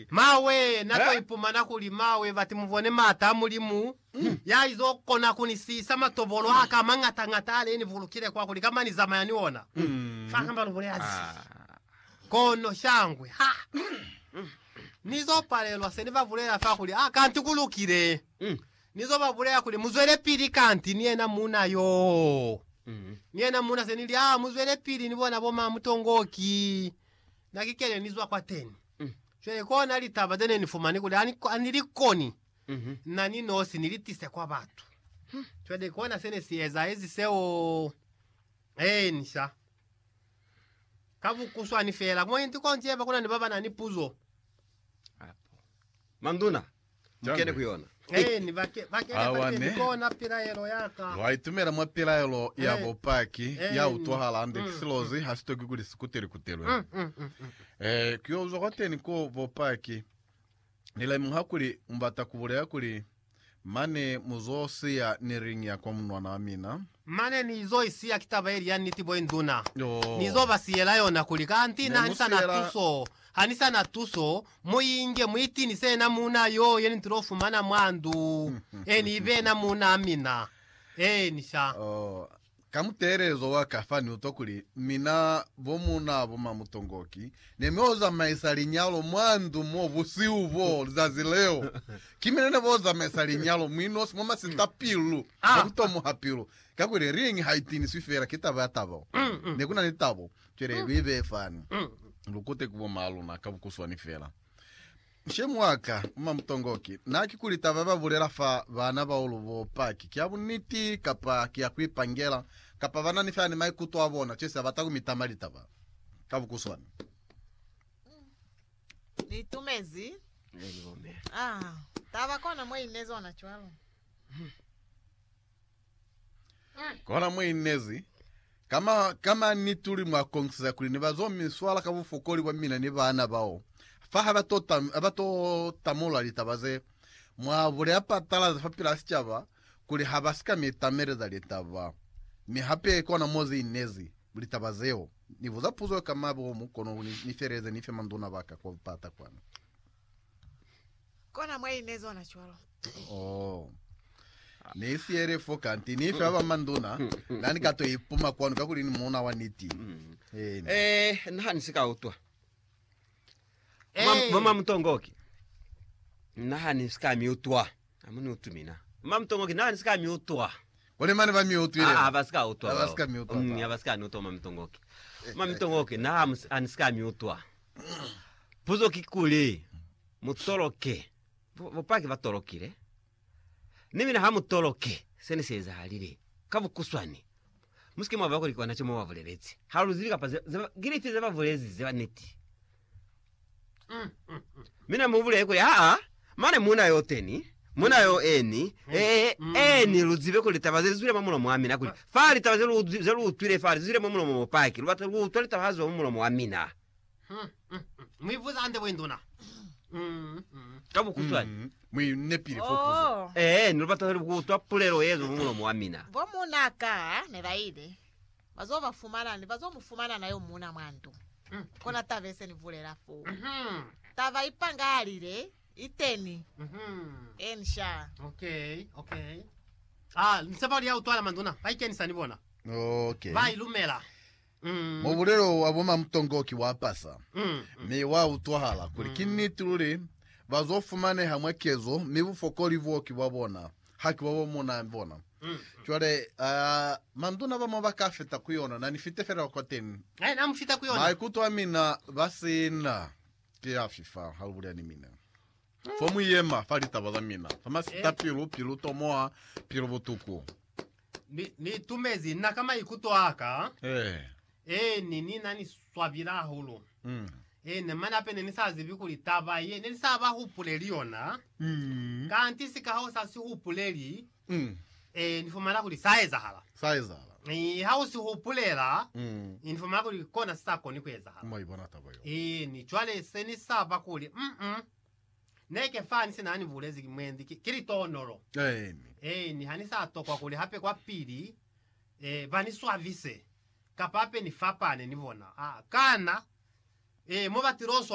Mawe, na to ipumana kuli mawe bati mubone maata a Mulimu, ya izo kona kuni siisa matobolo aka amangata ngata ale ni bulukile kwa kuli kamba ni zamaya ni ona. Fa kamba lu bulela zi. Kono shangwe, ha Ni zo palelwa se ni ba bulela fa kuli, a kanti ku lukile. Ni zo ba bulela kuli, muzwelepili kanti ni yena muuna yoo. Ni yena muuna se ni li, a muzwelepili ni bona bo ma mutongoki. Na ki kene ni zwa kwateni. Mm. Cwale kona litaba zene ni fumani kuli ani, ani likoni Mhm. na ni nosi ni litise kwa batu. Hmm. Cwale kona sene si eza ezi seo. Eeni sha. Ka bukuswani fela. Mwa inti konti yeba kuna ni baba na ni puzo. Apo. Manduna, Mukene ku yona. Awane. Lwa itumela mwa pilaelo ya bupaki ya utwahala hande ki silozi ha si toki kuli si kutelikutelwe. Ee, ku yo zwa kwateni ko bupaki. Ni lemuha kuli mu bata ku bulela kuli, Mane mu zo siya ni ring ya kwa munwana wa mina. Mane ni zo i siya ki taba ye li ya niti bo induna. Ni zo ba siyela yona kuli, Kanti na ha ni sa na tuso, ha ni sa na tuso, Muinge, muitinise yena muuna yo yeni ntulo fumana mwa ndu, eni ibe yena muuna mina. Eeni, sha. Oh, ka muteelezo wa ka fani utwa kuli, Mina, bo muuna bo mamutongoki, ne mi o zamaisa linyalo mwa ndu mo busihu bo, lizazi leo. Ki mina ne bo zamaisa linyalo mwi nosi mwa masita pilu, mwa kutomoha pilu. Kakuli ring haitiniswi fela ki taba ya tabo. Nekuna ni tabo. Cwale lu ibeye fani, lu kute ku bomaa luna ka bukuswani fela. Nshemi wa ka, Mma Mutongoki, na ki kuli taba ba bulela fa baana bao lu bo Paki ki ya buniti, kapa ki ya ku ipangela, kapa ba na ni feela ni maikuto a bona, cwesi ha bata ku mi tama litaba ka bukuswani. Ni itumezi. Ne ni bombe. Ah, taba kona mo i inezi ona cwalo. Kona mwa inezi. Kama, kama ni tuli mwa kongisa kuli ni ba zo mi swala ka bufokoli bwa mina ni bana bao. Fa ha ba to, tam, ha ba to tamula litaba ze mwa buleya patalazi fa pila sicaba kuli ha ba si ka mi tameleza litaba. Mi hape kona mo zi inezi, litaba zeo. Ni buza puzo yo kama bo mu kono kuli ni feleze ni fe manduna ba ka kwa bupata kwanu. Kona mwa ine zona cwalo. Oh. Ni siele fo kanti ni fe ba manduna na ni ka to ipuma kwanu ka kuli ni muna wa niti. Mm. Amen. Eh, nna ha ni si ka utwa. Mama, Eh. mama Mutongoki. Nna ha ni si ka mi utwa. Amu ni utwi mina. Ma Mutongo, ki nani si ka mi utwa? Kuli mane ba mi utwile. Aa, ba si ka utwa bao. Ba si ka mi utwa. Nya, ba si ka ni utwa, Ma Mutongo, ki. Ma Mutongo, ki na amu ani si ka mi utwa. Puzo kikuli, mu toloke. Bo, bopaki ba tolokile. Ni mina ha mu toloke se ne si ezahalile. Ka bukuswani, musike mwa ba kuli ki kona co mo ba bulelezi. Ha lu zibi kapa ze, ze ba, ki lifi ze ba bulezi ze ba niti. Mi ne mu bulekwe, Aa, mane muna yo teni, muna yo eni, e, eni, lu zibe kuli litaba ze zwile mwa mulomo wa mina, kuli fa litaba ze lu, ze lu utwile fa, li zwile mwa mulomo mo paki, lu bata lu utwa litaba ha ziwa mwa mulomo wa mina. Mu ibuza hande bo induna. Ka bukuswani. Mu inepile fo puzo. Oh, Ee, ni lu bata ku utwa pulelo ye zwa mwa mulomo wa mina. bo muna ka ne ba ile. Bazo ba fumana ni bazo mu fumana na yo muna mwa ndu. Kona taba ye se ni bulela foo. Taba i pangahalile, iteni. Eeni sha. Okay, okay. Ah, ni sepa kuli ya utwala manduna ba ikenisa ni bona. Okay. Ba ilumela. Mm. Mubulelo wa bo Mamutongo ki wa pasa, Mm. mi wa utwahala kuli ki niti luli bazo fumaneha mwa kezo, mi bufokoli boo ki bwa bona. haki ba ba mona bona. Cwale, ah, manduna ba mo ba ka fita ku yona, na ni fite fela kwa teni. Hai na mu fita ku yona. Maikuto a mina ba sina ki a fifa ha lu bulela ni mina. Fo mu yema fa litaba za mina, fa masita pilu, pilu tomoha, pilu butuku. Ni, ni itumezi nna ka maikuto a ka. Eh. Eeni, Ni na ni swabile hahulu. Eena, mane hape ne ni sa zibi kuli taba ye ne ni sa ba hupuleli yona, kanti sika ha u sa si hupuleli, eeni, ni fumana kuli sa ezahala. Sa ezahala. Eeni, ha u si hupulela, eeni, ni fumana kuli kona si sa koni ku ezahala. Mwa i bona taba yeo. Eeni, cwale se ni sa ba kuli, mm, neke fani se na ni bulezi ki mwendi, ki, ki litonolo. Eeni. Eeni, ha ni sa tokwa kuli hape kwapili, eh, ba ni swabise. Kapa hape ni fapane ni bona. Aa, kana? Ee, mo ba tilozwa.